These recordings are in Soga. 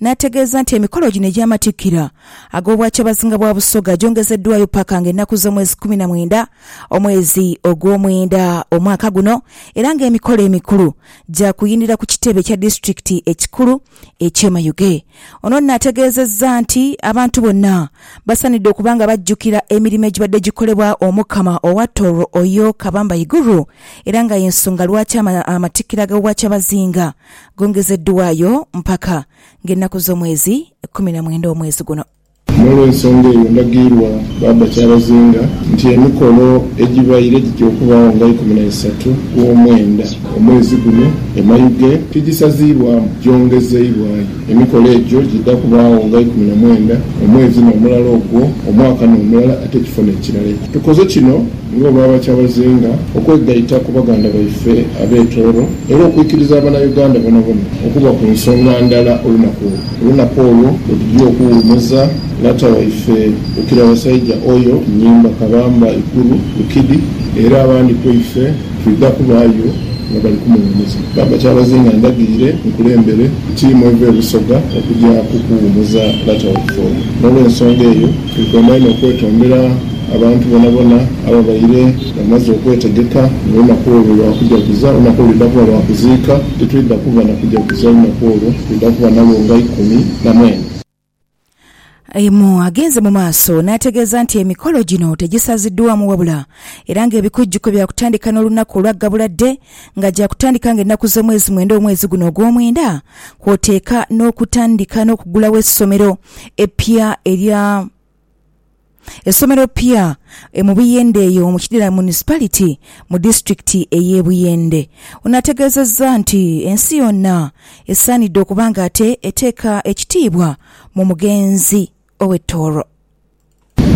n'ategeeza nti emikolo gino egy'amatikkira ag'Obwakyabazinga bwa Busoga gyongezeddwaayo paka nga ennaku z'omwezi kkumi na mwenda omwezi ogw'omwenda omwaka guno era nga emikolo emikulu gyakuyindira ku kitebe kya disitulikiti ekikulu eky'e Mayuge. Ono nno ategeezezza nti abantu bonna basaanidde okuba nga bajjukira emirimo egibadde gikolebwa Omukama owa Tooro Oyo Kabamba Iguru era nga y'ensonga lwaki amatikkira g'Obwakyabazinga gongezeddwaayo mpaka ng'ennaku z'omwezi kumi na mwenda omwezi guno. N'olw'ensonga eyo ndagirwa baaba kyabazinga nti emikolo egibaire gija okubaagho nga ikumi na isatu gw'omwenda omwezi guno e Mayuge tigisaziibwamu gyongezeibwayo. Emikolo egyo gidha kubaagho nga ikumi na mwenda omwezi n'omulala ogwo omwaka n'omulala ate ekifo n'ekirala. Tukoze kino Nga bwaba kyabazinga okwegaita ku baganda baife abe Tooro era okwikiriza abana Uganda bonabona okuba ku nsonga ndala olunaku olwo, olunaku olwo lwetujia okuwumuza lata waife Bukira Basaija Oyo, Nyimba, Kabamba, Ikuru, Bukidi era abandi kweife twidha kubaayo nga bali kumuwumuza. Baba Kyabazinga ndagire nkulembere tiimu eva e Busoga okugya ku kuwumuza lata waife oyo. Nolwensonga eyo Nkomaire n'okwetondera abantu bonabona ababaire bamaze okwetegeka mu lunaku olwo lwa kujaguza lunaku olwidha kuba lwa kuziika. Titwidha kuba na kujaguza lunaku olwo, twidha kuba nalwo nga ikumi na mwenda. Aemu agenze mu maaso n'ategeeza nti emikolo gino tegisaziddwaamu wabula era ng'ebikujjuko bya kutandika n'olunaku olwa Gabula Day nga gya kutandika nga ennaku z'omwezi mwenda omwezi guno ogw'omwenda kwoteeka n'okutandika n'okugulawo essomero eppya erya essomero eppya e mu Buyende eyo mu Kidira Municipality mu disitulikiti ey'e Buyende. Ono ategeezezza nti ensi yonna esaanidde okuba ng'ate eteeka ekitiibwa mu mugenzi. ow'e Tuuro.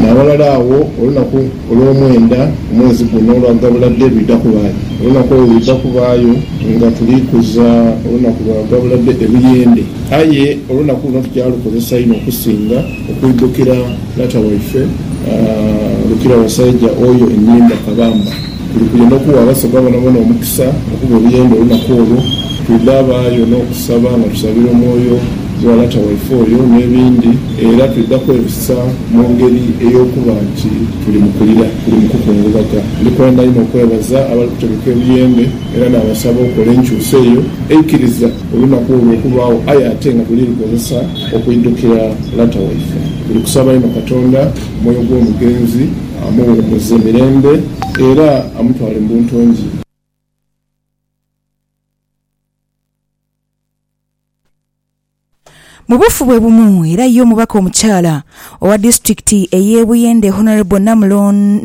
N'aghalala agho olunaku olw'omwenda mu mwezi guno olwa gabula dhe lwidha kubaayo. Olunaku olwo lwidha kubaayo nga tuli kuza olunaku lwa gabula dhe ebuyende. Aye olunaku luno tugyalukozesa inho okusinga okwidhukira taata waife Lukira Wasaija oyo enhimba kabamba. Tuli kuya n'okugha Abasoga boonaboona omukisa okuba ebiyembe olunaku olwo. Twidha abaayo n'okusaba nga tusabira omwoyo gwa lata waife oyo n'ebindi. Era twidha kwebisa mu ngeri ey'okuba nti tuli mu kulira, tuli mu kukungubaga. Ndi kwenda inho okwebaza abali kutegeka ebiyembe era naabasaba okola enkyusa eyo eikiriza olunaku olwo okubaagho aye ate nga tuli likozesa okwidhukira lata waife. Tuli kusaba inho Katonda. Omwoyo gw'omugenzi amuwumuze mirembe, era amutwale mu buntongi. Mu buufu bwe bumu era ye omubaka omukyala owa disitulikiti ey'e Buyende Hon Namulondo,